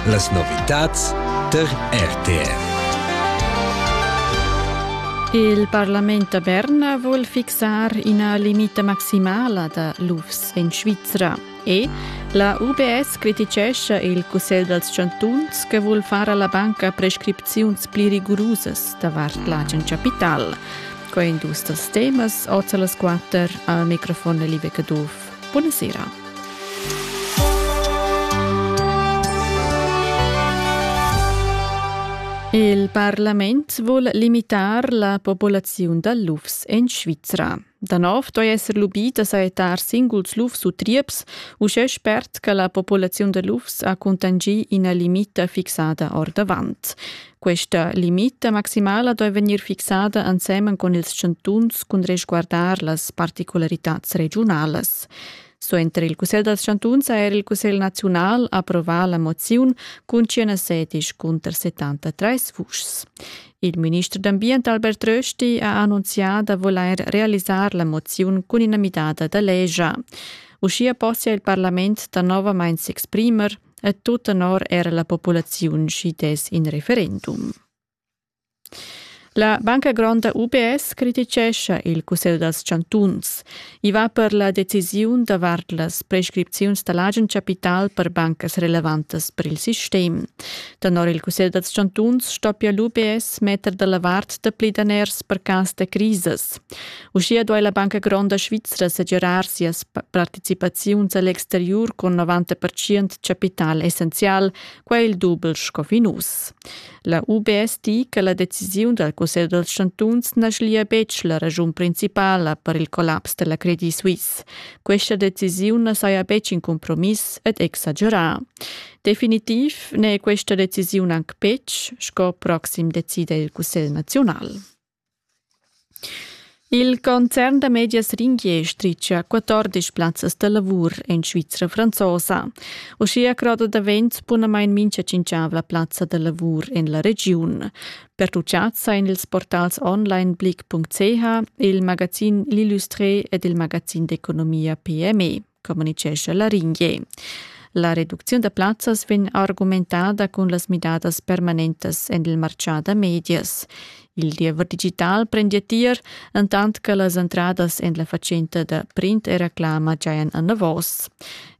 Las novitads tar RTR. Il parlament da Berna vul fixar ina limita maximala da lufs en Svizra e la UBS criticescha il Cussegl dals chantuns che vul far alla banca prescripziuns pli rigurusas davart l'agen capital. Quai en dus dals temas, oz a las quatter, al microfon live Caduff. Buonasera. Il parlament vul limitar la populaziun da lufs en Svizra. Da nov doi esser lubì da saetar singuls lufs u trieps, uschè spert che la populaziun da lufs ha cuntangi ina limita fixada ordavant. Questa limita maximala doi vegnir fixada ensemen con ils chantuns cun resguardar las particularitads regionalas. So entre il Cussegl dels Chantuns ha er il Cussegl naziunal approvar la moziun cun 116 cunter 73 vuschs. Il minister d'ambient Albert Rösti ha annunziato da voler realizzare la mozione con una midata da legia. Uschia possia il Parlament da novamente s'exprimer e tut tenor era la populaziun schi dess in referendum. La Banca Gronda UBS criticescha il Cussegl dals chantuns. I va per la decisiun davart las prescripziuns da l'agen capital per bancas relevantas per il sistem. Tenor il Cussegl dals chantuns stoppia l'UBS metter da la vart dapli daners per cas da crisas. Uschia duai la Banca Gronda Svizra segirar sias participaziuns a l'exteriur cun 90% chapital essenzial, quai il dubel sco fin uss. La UBS di che la decisiun dal Cussegl dals chantuns na schlia betg la raschun principala per il collaps da la Credit Suisse. Questa decisiun na saja betg in compromiss ed exagerà. Definitiv n'è questa decisiun anc betg, sco proxim decida il Cussegl naziunal. Il concern da medias Ringier stritga 14 plazzas da lavur en Svizra franzosa. Uschia croda davent bunamain mincha tschinchavla plazza da lavur en la regiun. Pertuchads sain ils portals onlineblick.ch, il magazin L'Illustré ed il magazin d'economia PME. communicescha Laringier. La reducziun da plazzas vegn argumentada cun las midadas permanentas en il martgà da medias. Il diever digital prendia tier, entant che las entradas en la fatschenta da print e reclama giajan anavos.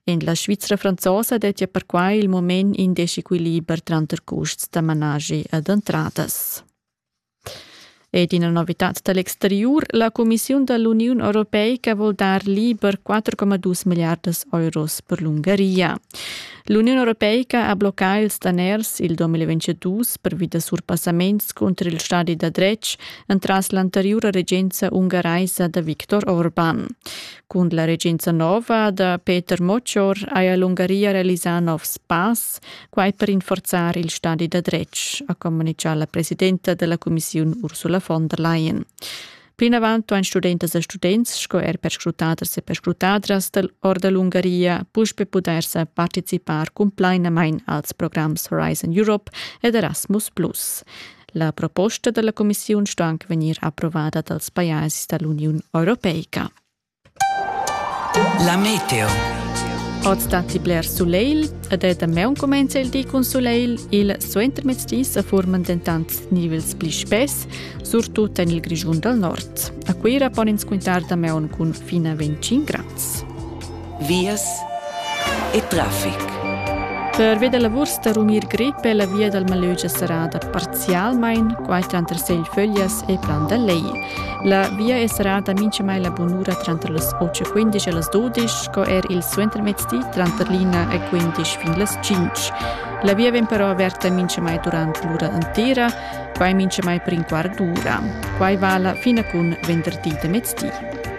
En la Svizra franzosa dettia perquai il moment in dischequiliber tranter custs da managi ed entradas. Ed ina novitad da l'exteriur, la cumissiun da l'Uniun europeica vul dar liber 4,2 milliardas euros per l'Ungaria. L'Uniun europeica ha bloccà ils daners il 2022 pervi da surpassaments cunter il stadi da dretg entras l'anteriura regenza ungaraisa da Viktor Orban. Cun la regenza nova da Peter Moccior haja l'Ungaria realisà novs pass, Quai per rinforzar il stadi da dretg, ha communitgà la presidenta della cumissiun Ursula von der Leyen. Plinavant han studentas e students sco er perscrutaders e perscrutadras dell da l'Ungaria puspe pudair sa participar cumplainamain als programs Horizon Europe ed Erasmus+. La proposta della commissiun sto anche vegnir approvada dals pajais dall'Uniun Europeica. La meteo. Oz datti bler sulegl ed è damaun cumenza il di cun sulegl. Il suentermezdi sa furman dentant nivels pli spess, surtut en il Grischun dal nord. A Cuira pon ins quintar damaun cun fin a 25 grads. Vias e traffic. Per via da la Wurst a Rumir Grippe la via dal Malögia sarà da Specialmein quai tranter Segl-Föglias e Plan da Lej. La via è serrada minchamai la bunura tranter las 8.15 e las 12 sco er il suentermezdi tranter l'ina e 15 fin las 5. La via vegn però averta minchamai durant l'ura entera, quai minchamai per in quart d'ura. Quai vala fin a cun venderdi da mezdi.